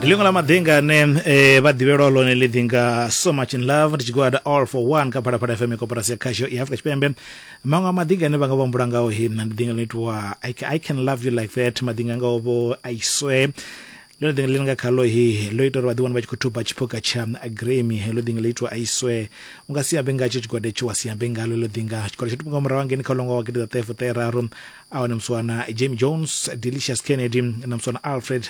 ndi ḽiṅwe ḽa maḓinga ane eh, vha ḓivhelwa ḽone ḽi ḓinga so much in love ndi tshigwada all for one kha phalaphala fm koporasi ya khasho ya afrika tshipembe maṅwe a maḓinga ane vha nga vha humbula ngao he mna ndi ḓinga ḽo itiwa I ca- i can love you like that maḓinga ngao vho i swear ḽone ḓinga ḽi nga khalo he ḽo ita uri vha ḓiwana vha tshi khou thuba tshiphuga tsha agremi heḽo ḓinga ḽo itiwa i swear u nga si ambe ngatsho tshigwada itsho wa si ambe ngalo ḽo ḓinga tshigwada tsho thoma nga murahu hangeni kha ṅwaha wa gidi ḓaṱahefuṱaheraru awa na mswana jamie jones delicious kennedy na mswana alfred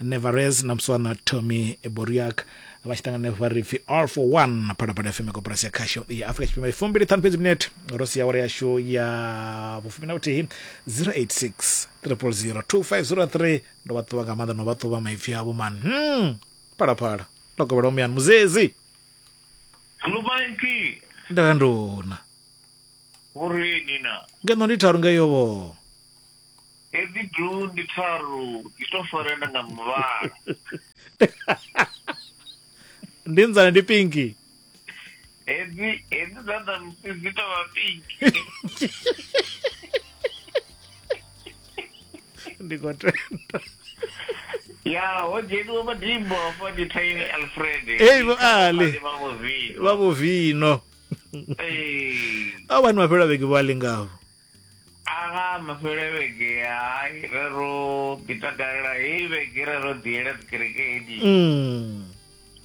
nevarez na mswana tommy boriak vha tshi ṱangana vha ri pfi all for one phalaphala fm koporasi ya khasho ya afrika tshipembe fumbili ṱhanu fhedzi minete ro sia awara yashu ya vhufumi na vhuthihi 086 000 2503 ndo vha ṱuwa nga maanḓa no vha ṱuwa maipfi avho man hmm. phalaphala ndo kovhela umuyani muzezi Lubanki. nda nduna Vhureni na. ngeno ndi tharu ngeyo vho Hedzi blue ndi tharu i to farana nga muvhala. ndi nzane ndi pinki Hedzi hedzi dza dza musi dzi to vha pink. ndi khou tenda Ya, ho dzheniwa madimbo afho ndi Tiny Alfred. Hey, vho Ali. Vha Movino. vha vho vino Ee. a wani mafhelo a vhege vho a lingaho Aha, mafhelo a vhege hai ra ro ḓi takalela heyi vhege ra ro ḓi yela dzikerekeni Mm.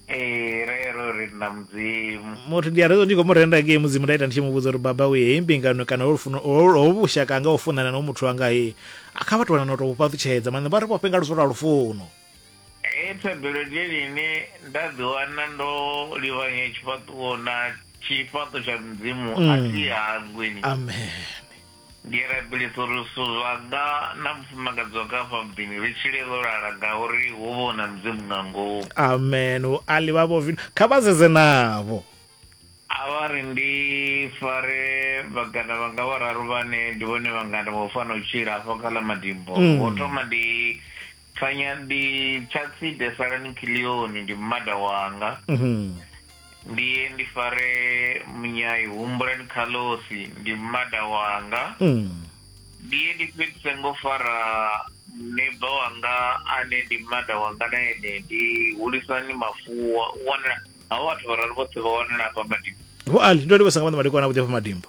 ee ra ya ro renda mudzimu muthu ndi a rezo ndi khou mu renda ngei mudzimu nda ita ndi tshi mu vhudza uri baba uye heyi mbingano kana ho lufuno- ho- ho vhushaka anga u funana no muthu wanga he a kha vha tovhana na u tou vhu fhaṱutshedza maanḓa vha ri vhofhe nga luso lwa lufuno Hei thabelo ndi yone ine nda ḓiwana ndo livhanya tshifhaṱuwo na tshifhaṱo tsha mudzimu a mm. si hangwini amen ndi rabelisa uri zwithu zwanga na mufumakadzi wanga afha muḓini ri tshile ro lala ngauri hu vha na mudzimu nga ngomu amen u ali vha vho vino kha vha zeze navho a vha ri ndi fare vhagana vhanga vhararu vhane ndi vhone vhangana vho fana u tshila afho kha ḽa madimbo mm. ho thoma ndi Thanya ndi Tshatside Salani Kilioni ndi mmada wanga. Ndi ye ndi fare Munyai Humbulani Khalosi ndi mmada wanga. Ndi ye ndi fhedzise ngo fara muneiba wanga ane ndi mmada wanga na ene ndi Hulisani Mafuwa. U wanala, havho vhathu vhararu vhoṱhe vha wanala hafha Madimbu. Vho Ali, ndo livhusa nga maanḓa madekwana avhuḓi hafha Madimbu.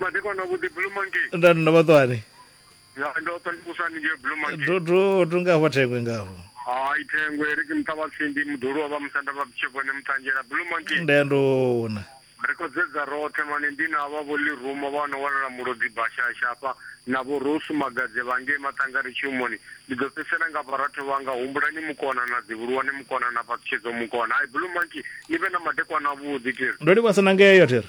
madekwana vhuḓi blue monkey nda nda vhaṱwani ya ndo to ndikusani nje blue monkey to to to nga hafha thengwe ngafho hayi thengwe ri ke muṱa wa tsindi muḓulu wa vha musanda vha butshevhone muṱanzhela blue monkey nda ya ndona ri khou dzedza roṱhe mane ndi na vha vho liruma vha no wanala mulodzi bashasha hafha na vho rosu magadze vha ngei maṱanga ri tshumoni ndi ḓo fhedzisela nga vharatho vhanga humbulani mukona na dzivhuluwane mukona na fhaṱutshedzo mukona hayi blue monkey ni vhe na madekwana avhuḓi tiri ndo livhasa na ngeyo thiri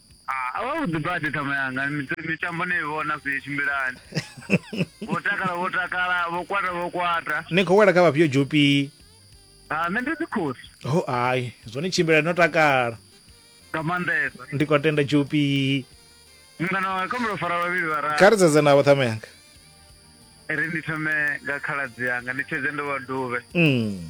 Ah, a vhavhuḓi badi ṱhama yanga Mit- mitambo ni i vhona zwi tshimbilani vho takala vho takala vho kwata vho kwata ni khou wela kha vhafhio dzhupi Ah, nṋe ndi dzikhosi ho ai zwone tshimbila no takala nga maanḓesa ndi khou tenda dzhupi mungana wanga khombelo fara vhavhili kha vhararu ri dzedze navho ṱhama yanga ri ndi thome nga khaladzi yanga ndi tshedze ndo vha duvhe mm.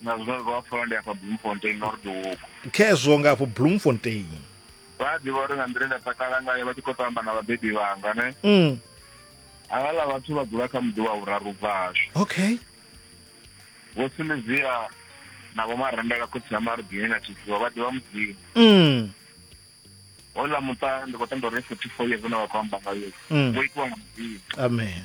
na zwiḽa zwi vha pfala ndi afha bloemfontein nordo huko khezwo nga afho bloemfontein vha a ḓivha uri nga nḓila nda takala ngayo vha tshi khou tamba na vhabebi vhanga ne mm. havhaḽa vhathu vha dzula kha muḓi wa vhuraru bva hashu okay vho silivia na vho marembela khotsi ya marubini na tshisiwa vha ḓivha mudzimu mm. hola muṱa ndi khou tenda uri forty four years na vha khou amba ngayo mm. vho itiwa nga mudzimu amen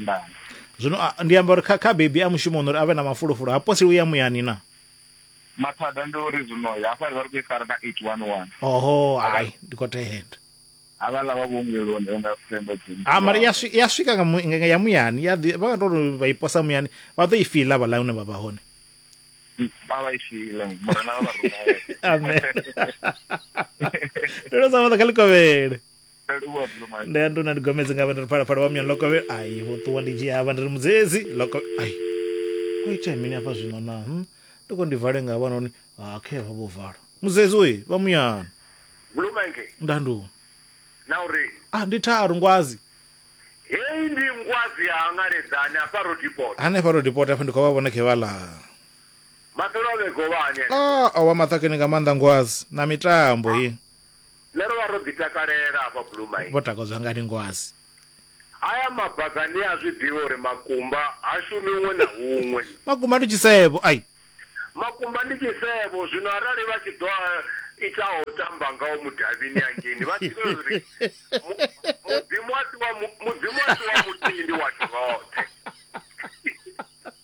nḓani zwino a- ndi amba uri kha kha bebi a mushumoni uri a vhe na mafulufulu ha poseli u ya muyani na mathada ndi uri zwino hafha ri vha ri khou i fara na eight one one oho hai ndi khou tenda havhala vha vhuongeloni vha nga themba dzini ha mara ya swi- ya swika nga mu- nga- nga ya muyani ya ḓi- vha nga tori vha i posa muyani vha ḓo i fiḽa vhaḽa hune vha vha hone vha vha i file murena vha vha rumele amen ndo no sa vhaḓa kha likovhele ndi anduna ndi gomedzi nga vhana ri phalaphala wa myani lokovhe ai vho ṱuwa ndi dzhia havha ndi ri mudzedzi loko ai o itea mini hafha zwino na hm ndi khou ndi vale nga vha noni ha khe vha vho vala mudzedzi oyi vha muyani bulumenge nda ndu na uri ah ndi tharu ngwazi heyi ndi ngwazi ya hangaledzani hafha rodipota hanefha ro dipota hafha ndi khou vha vhona khe vha ḽa maṱolo a vhegovhani ah o wa maṱakeni nga maanḓa ngwazi na mitambo ye Nṋe ro vha ro ḓi takalela hafha Blue Mine. Vho takadzwa nga Ningoasi. Haya mabaga ni a zwi ḓivha uri makumba ha shumi huṅwe na huṅwe. Makumba ndi tshisevho, ai. Makumba ndi tshisevho, zwino arali vha tshi ḓo a ita a u tamba ngao mudavhini hangeini, vha ḓivhe uri Mu, Mudzimu a si wa, Mu, Mudzimu a si wa muthihi, ndi washu roṱhe.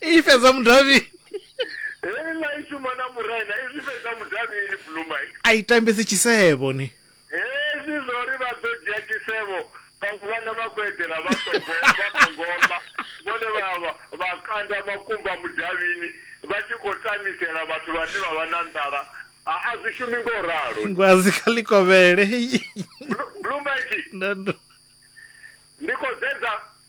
i fhedza mudavhini hei ngai shuma na muraina izwi fhedza mudavhini blumai a i tambisi tshisevho ni hezwi zwa uri vha ḓo dzhia tshisevho vhaṅwe vhana vha khou eḓela vha songo vha songo ḽa vhone vha vha vha kanda makumba mudavhini vha tshi khou tamisela vhathu vhane vha vha na nḓala a a zwi shumi ngo ralo ngwazi kha ḽikovhele Blu- blumai nda ndo ndi khou sedza